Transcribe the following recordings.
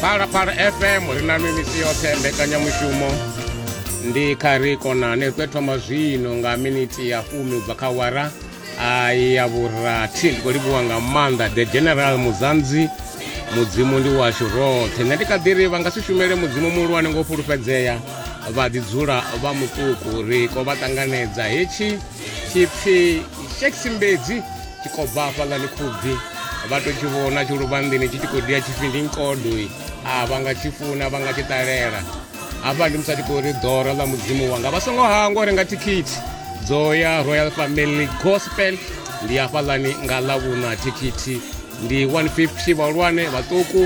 phalaphala fm ri na nwi misi yoṱhe mbekanyamushumo ndi kha ri konane ri tou thoma zwino nga miniti ya fumi u bva kha wara ya vhurathi ndi khou livhuwa nga maanḓa the general muzanzi mudzimu ndi washu roṱhe nṋe ndi kha ḓi ri vha nga si shumele mudzimu muhulwane ngo fhulufhedzea vha ḓi dzula vha muṱuku ri ko vha ṱanganedza hetshi tshipfi sheksimbedzi tshi khou bva hafha nga ni khubvi vha to tshi vhona tshi luvhanḓini tshi tshi khou dia tshipfi ndi nkodoi a vha nga tshi funa vha nga tshi ṱalela hafha ndi musi a tshi khou ri ḓora ḽa mudzimu wanga vha songo hangwa uri nga thikhithi dzo ya royal family gospel ndi hafhaḽani nga ḽa vhuṋa thikhithi ndi 150 vhahulwane vhaṱuku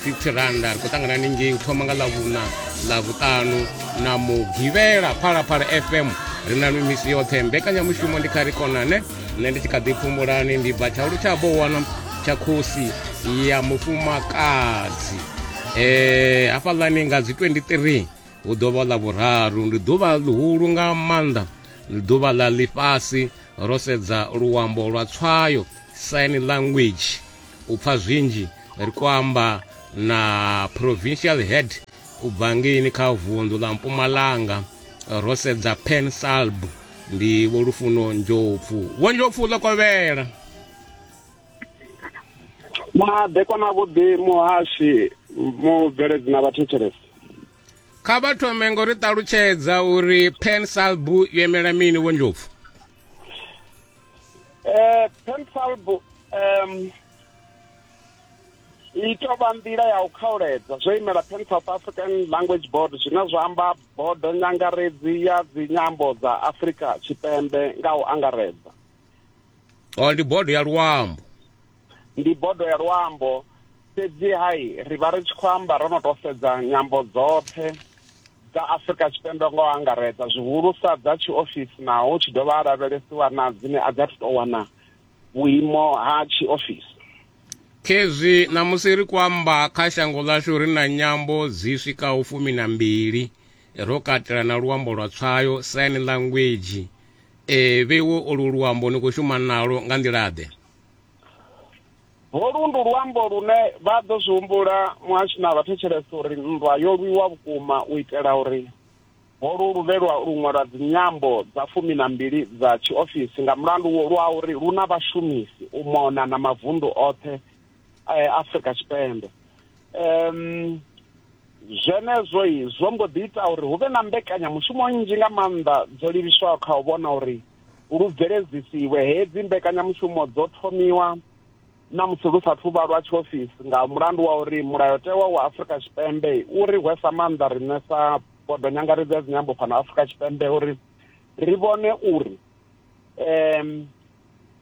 50 randa ri khou ṱangana ningei u thoma nga ḽa vhuṋa ḽa vhuṱanu na mugivhela phalaphala fm ri na mimisi yoṱhe mbekanyamushumo ndi kha ri konane nṋe ndi tshi kha ḓi pfumulani ndi bva tshaulu tsha bowana tsha khosi ya mufumakadzi um hafhaḽani nga dzi 23 hu ḓo vha ḽa vhuraru ndi ḓuvha ḽihulu nga maanḓa ndi ḓuvha ḽa ḽifhasi ro sedza luambo lwa tswayo sign language u pfha zwinzhi ri khou amba na provincial head U bva ngeini kha vunḓu ḽa Mpumalanga ro sedza Pan Salb ndi Vho Lufuno Ndlopfu. Vho Ndlopfu ḽo kovhela. Madekwa na vhuḓi muhashi mubveledzi na vhathetshelesi. Kha vha thome ngo ri ṱalutshedza uri Pan Salb yo imela mini Vho Ndlopfu? Eh, Pan Salb um i tou vha nḓila ya u khauledzwa zwo imela pan south african language board zwine zwa amba bodo nyangaredzi ya dzinyambo dza afurika tshipembe nga u angaredza o oh, ndi bodo ya luambo ndi bodo ya luambo fhedzi hai ri vha ri tshi khou amba ro no tou sedza nyambo dzoṱhe dza afurika tshipembe ngo angaredza zwihulusa dza tshiofisi naho tshi dovha a lavhelesiwa na dzine a dza thu tou wana vhuimo ha tshiofisi. Khezwi ṋamusi ri khou amba kha shango ḽashu ri na nyambo dzi swikaho fumi na mbili, ro katela na luambo lwa tswayo, sign language. E, vheiwe olu luambo ni khou shuma nalo nga nḓila-ḓe? Holu ndi luambo lune vha ḓo zwi humbula muhashi na vhathetshelesi uri nndwa yo lwiwa vhukuma u itela uri Holu luvhelwa lu ṅwalwa dzinyambo dza fumi na mbili dza tshiofisi nga mulandu lwa uri lu na vhashumisi u mona na mavundu oṱhe a Afrika Tshipembe. Zwenezwo zwo mbo ḓi ita uri hu vhe na mbekanyamushumo nnzhi nga maanḓa dzo livhiswaho kha u vhona uri lu bveledzisiwe. Hedzi mbekanyamushumo dzo thomiwa na musi lu sa thu vha lwa tshiofisi nga mulandu wa uri mulayotewa wa Afrika Tshipembe u ri hwesa maanḓa riṋe sa bodo nyangaredzi ya dzinyambo fhano afrika tshipembe uri ri vhone uri um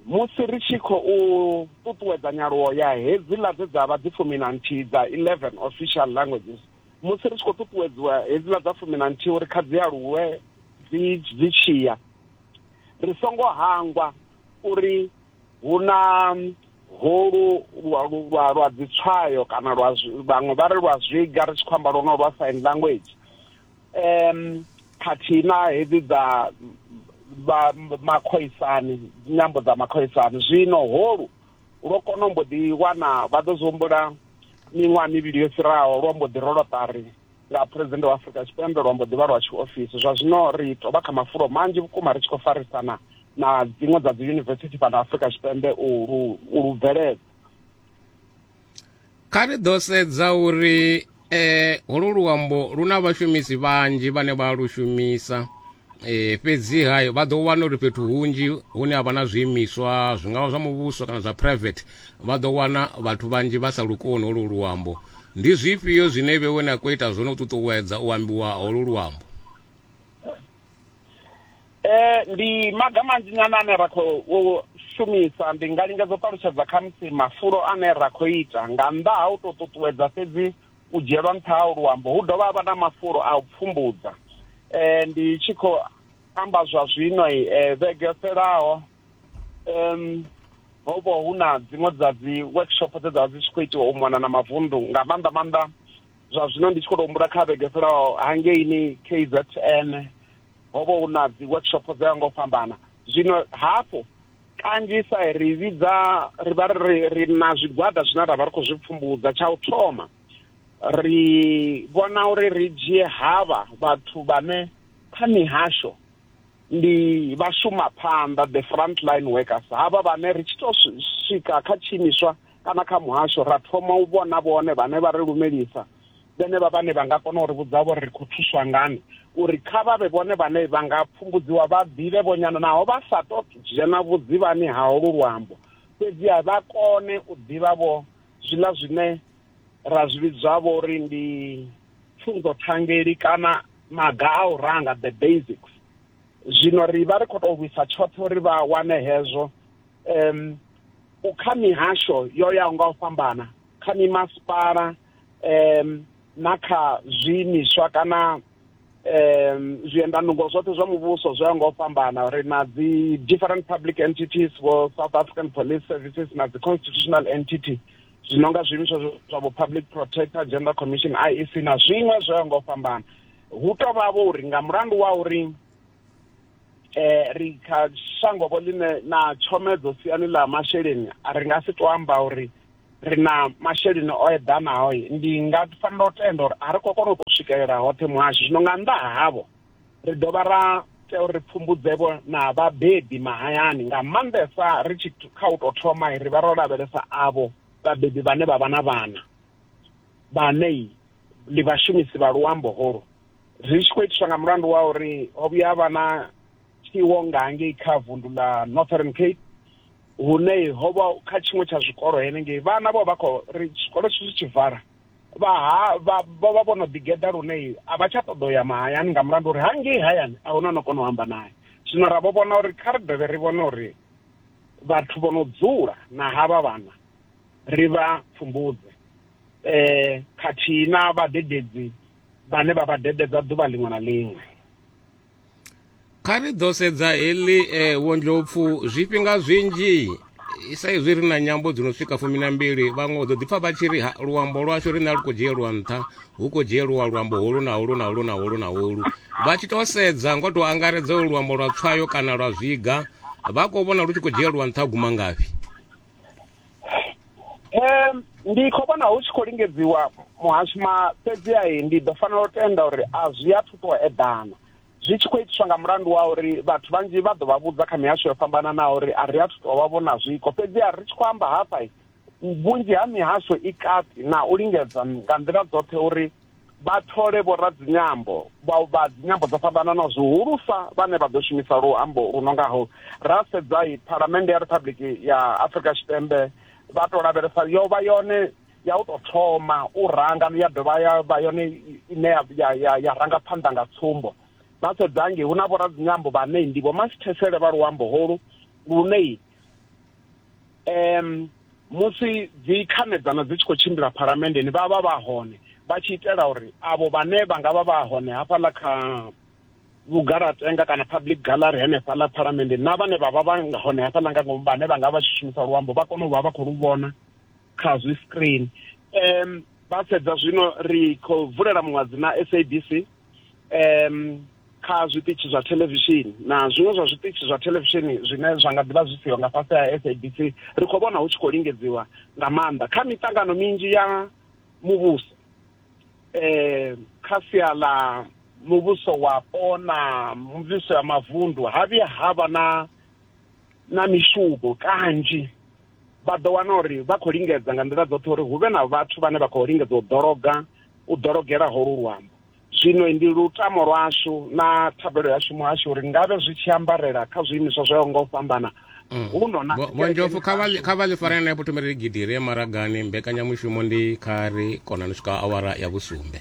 musi ri tshi khou ṱuṱuwedza nyaluwo ya hedziḽa dze dza vha dzi fumi na nthihi dza eleven official languages musi ri tshi khou ṱuṱuwedziwa hedziḽa dza fumi na nthihi uri kha dzi aluwe dzi dzi tshiya ri songo hangwa uri hu na holu lwa lwa lwa dzitswayo kana lwa vhaṅwe vha ri lwa zwiga ri tshi khou amba lwono lwa sign language um khathihi na hedzi dza makhoisani nyambo dza makhoisani zwino holu lwo kona mbo ḓi wana vha ḓo zwi humbula miṅwaha mivhili yo fhiraho lwo mbo ḓi rolo ṱari nga phuresidennde wa afrika tshipembe lwa mbo ḓivha lwa tshiofisi zwa zwino ri to vha kha mafulo manzhi vhukuma ri tshi khou farisana na dziṅwe dza dzi yunivesithi fhano afrika tshipembe u lu bveledza kha ri ḓo sedza uri eh holu luambo lu na vhashumisi vhanzhi vhane vha lu shumisa e, fhedzi ha vha ḓo wana uri fhethu hunzhi hune ha vha na zwiimiswa zwi ngavha zwa muvhuso kana zwa private vha ḓo wana vhathu vhanzhi vha sa lukoni holu luambo ndi zwifhio zwine vhe wena khou ita zwone u ṱuṱuwedza u ambiwa holu luambo eh ndi maga manzhi nyana ane ra khou shumisa ndi nga lingedza u ṱalutshedza khamusi mafulo ane ra khou ita nga nnḓa ha u tou ṱuṱuwedza fhedzi u dzhielwa nṱha ha luambo hu dovha havha na mafulo a u pfumbudza eh ndi tshi khou amba zwa zwino eh vhege fhelaho um ho vho hu na dziṅwe dza dzi workshop dze dza dzi tshi khou itiwa u mona na mavundu nga maanḓa maanḓa zwa zwino ndi tshi khou to humbula kha vhege fhelaho hangeini KZN ho vho hu na dzi workshop dza ngo fhambana zwino hafho kanzhisa ri vhidza ri vha ri ri na zwigwada zwine ra vha ri khou zwi pfumbudza tsha u thoma ri vhona uri ri dzhie havha vhathu vhane kha mihasho ndi vha shuma phanḓa the front line workers havha vhane ri tshi to swika kha tshiimiswa kana kha muhasho ra thoma u vhona vhone vhane vha ri lumelisa vhenevha vhane vha nga kona u ri vhudza vho ri khou thuswa ngani uri kha vha vhe vhone vhane vha nga pfumbudziwa vha ḓivhe vhonyana naho vha sa to dzhena vhudzivhani ha holu luambo fhedziha vha kone u ḓivha vho zwiḽa zwine ra zwi vhidzwa vho uri ndi pfunzo thangeli kana maga a u ranga the basics zwino ri vha ri khou tou lwisa tshoṱhe uri vha wane hezwo um kha mihasho yo yaho nga u fhambana kha mimasipala um na kha zwiimiswa kana um zwiendanungo zwoṱhe zwa muvhuso zwo ya nga u fhambana ri na dzi different public entities vho south african police services na dzi constitutional entity zwi no nga zwiimiswa zwa vho public protector gender commission iec na zwiṅwe zwo ya nga u fhambana hu to vhavho uri nga mulandu wa uri um ri kha shango vho ḽine na tshomedzo siani ḽa masheleni a ri nga si to amba uri ri na masheleni o eḓanaho ndi nga fanela u tenda uri a ri khou kona u tou swikelela hoṱhe muhasho zwino nga nnḓa havho ri dovha ra tea uri ri pfumbudzevho na vhabebi mahayani nga maanḓesa ri tshi kha u tou thoma ri vha ro lavhelesa avho vhabebi vhane vha vha na vhana vhane ndi vhashumisi vha luambo holu ri tshi khou itiswa nga mulandu wa uri ho vhuya vha na tshiwo nga ngei kha vundu ḽa northern cape hune ho vha kha tshiṅwe tsha zwikolo henengei vhana vho vha khou ri tshikolo tshi tshi vhala vha vha vha vho no ḓigeḓa lune a vha tsha ṱoḓa u ya mahayani nga mulandu uri hangei hayani a huna no kona u amba naye zwino ra vho vhona uri kha ri dovhe ri vhone uri vhathu vho no dzula na havha vhana ri vha pfumbudze um khathihi na vhadededzi vhane vha vha dededza ḓuvha liṅwe na liṅwe kha ri ḓo sedza heḽi eh, vhondlopfu zwifhinga zwinzhi i sa izwi ri na nyambo dzi no swika fumi na mbili vhaṅwe u ḓo ḓipfa vha tshi ri "Ha, luambo lwashu riṋe a lu khou dzhielwa nṱha hu khou dzhielwa luambo holu na holu na holu na holu na holu vha tshi tou sedza ngo tou angaredza ulu luambo lwa tswayo kana lwa zwiga vha khou vhona lu tshi khou dzhielwa nṱha guma ngafhi um ndi khou vhona hu tshi khou lingedziwa muhashima fhedzi ai ndi ḓo fanela u tenda uri a zwi a thuto eḓana zwi tshi khou itiswa nga mulandu wa uri vhathu vhanzhi vha ḓo vha vhudza kha mihasho yo fhambananaho uri a ri a thuto vha vhona zwiko fhedzi a ri tshi khou amba hafha vhunzhi ha mihasho i kati na u lingedza nga nḓila dzoṱhe uri vha thole vhoradzinyambo vha vha dzinyambo dzo fhambananaho zwihulusa vhane vha ḓo shumisa luambo lu no ngaho ra sedza i phalamennde ya riphabuḽiki ya afurika tshipembe vha tou lavhelesa yo vha yone ya u tou thoma u ranga ya dovha ya vha yone ine ya ranga phanḓa nga tsumbo vha sedzange hu na vhoradzinyambo vhanei ndi vho masithesele vha luambo holu lunei um musi dzi khanedzano dzi tshi khou tshimbila phalamenndeni vha vha vha hone vha tshi itela uri avho vhane vha nga vha vha hone hafhaḽa kha vhugalatenga kana public gallery henefha ḽa phalamende na vhane vha vha vha hone hafhaḽa nga ngomu vhane vha nga vha tshi shumisa luambo vha kone u vha vha khou lu vhona kha zwi screen um vha sedza zwino ri khou vulela muṅwadzi na sabc um kha zwiṱitshi zwa thelevishini na zwiṅwe zwa zwiṱitshi zwa thelevishini zwine zwa nga ḓivha zwi siho nga fhasi ha sabc ri khou vhona hu tshi khou lingedziwa nga maanḓa kha miṱangano minzhi ya muvhuso eh kha sia ḽa muvhuso wapo na muvhuso ya mavundu ha vhuya ha vha na na mishumo kanzhi vha ḓo wana uri vha khou lingedza nga nḓila dzoṱhe uri hu vhe na vhathu vhane vha khou lingedza u ḓologa u ḓologela holu luambo zwino ndi lutamo lwashu na thabelo yashu muhasho uri ngavhe zwi tshi ambarela kha zwiimiswa zwo yaho nga u fhambana mm. huno na vhonjofu kha vha ḽi farela na vhuthomeli gidire maragani mbekanyamushumo ndi kha ri kona ni swika awara ya vhusumbe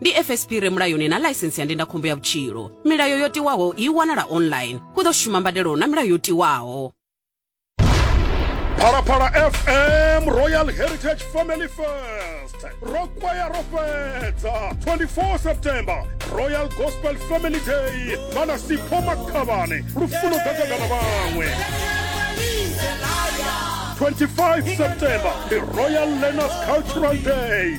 ndi fsp re mulayoni na ḽaisensi ya ndindakhombo ya vhutshilo milayo yo tiwaho i wanala online hu ḓo shuma mbadelo na milayo yo tiwaho phalaphala fm royal heritage family fest ro kwaya ro fhedza 24 september royal gospel family day vhana sipho makhavhane lufuno gagagana vhaṅwe 25 september ndi royal learners cultural day